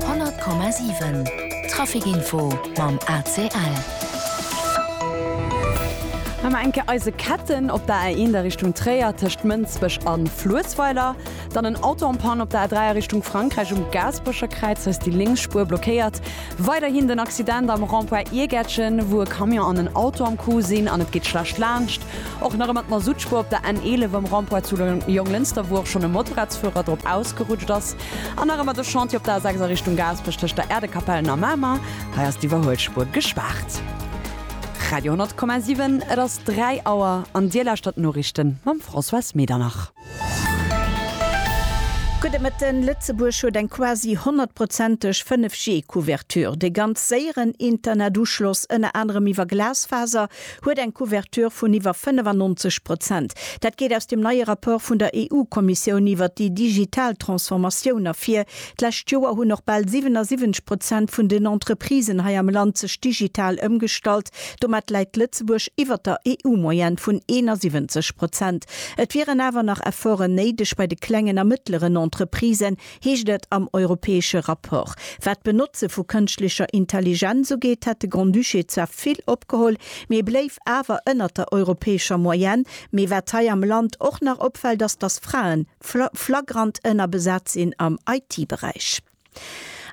100,7 Trafic info mam ACL. Mä mer eng Kéier eise Ketten op der A1 a Richtung Tréier tëscht Mënsbech a Fluessweiler. Dann en Auto en panne op der A3 a Richtung Frankräich um Gaasperecher Kräiz, hei ass déi lénks Spuer blockéiert. Weiderhin den Accident am Rond-point Iergätchen, wou e Camion an en Auto am Coup sinn an et geet schlecht laanscht. Och nach ëmmer d'Mazoutspur op der N11 am Rond-point zu Jonglënster, wou och schonn e Motorradsfuerer drop ausgerutscht ass. An nach ëmmer de Chantier op der A6 a Richtung Gaasperech tëscht der Äerdekapellen a Mamer. Hei ass d'Iwwerhuelspur gespaart. Radio 10,7, et ass 3 Auer an Dir lauschtert d'Noriichten mam Françoise Medernach. Gudde Mëtten, Lëtzebuerg huet eng quasi honnertprozenteg 5G Couverture. De ganz séieren Internetuschloss, ënner anerem iwwer Glasfaser, huet eng Couverture vun iwwer 95 Prozent. Dat geet aus dem neie Rapport vun der EU-Kommissioun iwwer déi digital Transformatioun ervir. D'lescht Joer hunn och bal 77 Prozent vun den Entreprisen hei am Land sech digital ëmgestallt. Domat läit Lëtzebuerg iwwer der EU-Moyenne vun 71 Prozent. Et wieren awer nach Efforten néideg bei de klengen a mëttleren Entreprisen, heescht et am europäesche Rapport. Wat d'Benotze vu kënschtlecher Intelligenz ugeet, hätt de Grand-Duché zwar vill opgeholl, mee bléif awer ënnert der europäescher Moyenne. Mee wat hei am Land och nach opfält, ass, datt Frae flagrant ënnerbesat sinn am IT-Beräich.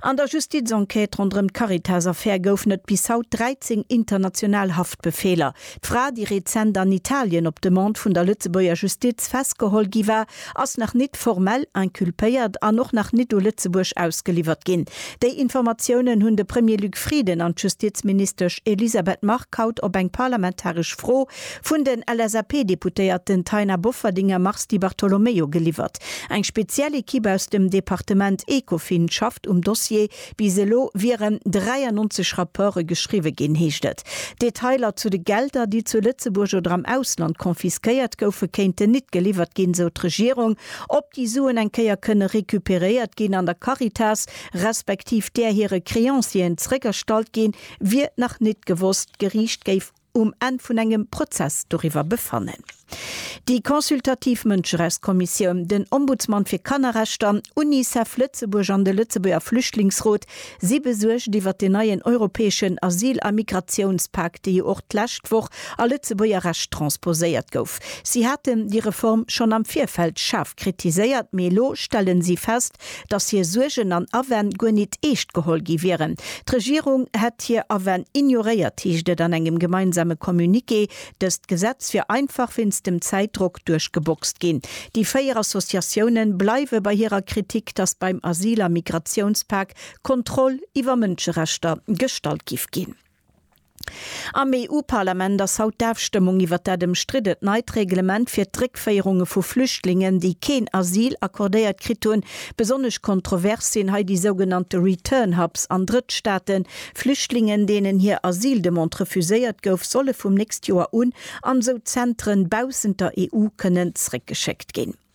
An der Justizenquête ronderëm d'Caritas-Affär goufen et bis haut 13 international Haftbefeeler. D'Fra, déi rezent an Italien op Demande vun der Lëtzebuerger Justiz festgeholl gi war, ass nach nit formell inculpéiert an och nach nit u Lëtzebuerg ausgeliwwert ginn. Déi Informatiounen hunn de Premier Luc Frieden an d'Justizministesch Elisabeth Margue haut op eng parlamentaresch Fro vun den LSAP-Deputéierten Taina Bofferding a Mars Di Bartolomeo geliwwert. Eng speziell Ekipp aus dem Departement Ecofin schafft um Dossier. Bis elo wieren 93 Rapporte geschriwwe ginn, heescht et. Detailer zu de Gelder, déi zu Lëtzebuerg oder am Ausland confisquéiert goufen, kéinten nit geliwwert ginn, sou d'Regierung. Ob déi Suen eng Kéier kënne recuperéiert ginn an der Caritas respektiv där hire Créancieren zréckerstallt ginn, wier nach nit gewosst. D'Geriicht géif. um Enn vun engem Prozess doriwwer befannen. Déi consultativ Mënscherechtskommissioun, den Ombudsman fir Kannerrechter, Unicef Lëtzebuerg an de Lëtzebuerger Flüchtlingsrot si besuergt iwwert den neien europäeschen Asyl a Migratiounspak, dee jo och d'lescht Woch a Lëtzebuerger Recht transposéiert gouf. Si haten déi Reform schonn am Virfeld schaarf kritiséiert, mee elo stellen si fest, dass hir Suergen an Awänn guer nit eescht geholl gi wieren. D'Regierung hätt hir Awänn ignoréiert, heescht et an engem gemeinsame Communiqué. Dëst Gesetz wier einfach wéinst dem Zäitdrock duerchgeboxt ginn. Déi véier Associatiounen bleiwe bei hirer Kritik, dass beim Asyl a Migratiounspak Kontroll iwwer Mënscherechter gestallt giff ginn. Am EU-Parlament ass haut d'Afstëmmung iwwert dat ëmstriddent neit Reglement fir d'Réckféierunge vu Flüchtlingen, déi keen Asyl accordéiert kritt hunn. Besonnesch kontrovers sinn hei déi sougenannte Return Hubs an Drëttstaaten. Flüchtlingen, deenen hir Asyldemande refuséiert gouf, solle vum nächst Joer un an esou Zentren baussent der EU kënnen zréckgeschéckt ginn.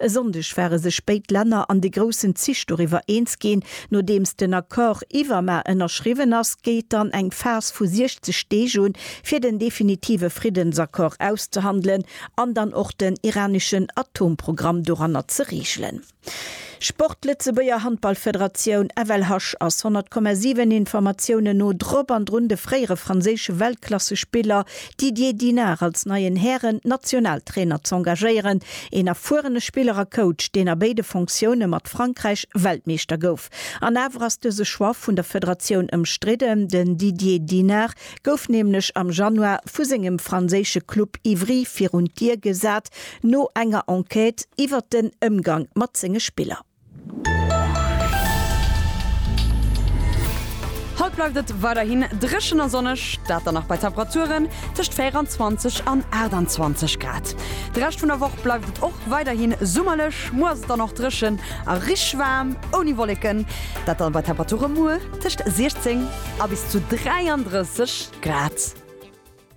E Sonndeg ware sech béid Länner an de groussen Zich doriwwer eens ginn. Nodeems den Accord iwwer mar ënnerschriwwen ass, geet dann eng Phas vu 60 Deeg un, fir den definitive Friddensaccord auszehandelen an dann och den iraneschen Atomprogramm doranner ze reegelen. Sport, Lëtzebuerger Handballfederatioun, FLH, ass 100,7 Informatiounen no drop an drun de fréiere franséische Weltklassespiller Didier Dinard als neien Hären-Nationaltrainer z'engagéieren, een erfuerene Spiller a Coach, deen a béide Fonctioune mat Frankräich Weltmeeschter gouf. An awer ass dëse Choix vun der Federatioun ëmstridden. Den Didier Dinard gouf nämlech am Januar vu sengem franséische Club Ivry virun d'Dier gesat, no enger Enquête iwwert den Ëmgang mat senge Spiller. Haut bleift et weiderhin dréchen a sonneg, dat dann nach bei Temperaturen tëscht 24 an 28 Grad. De Rescht vun der Woch bleift et och weiderhi summerlech, muer ass et dann och dréchen a richteg waarm ouni Wolleken, dat dann bei Temperature muer tëscht 16 a bis zu 33 Grad.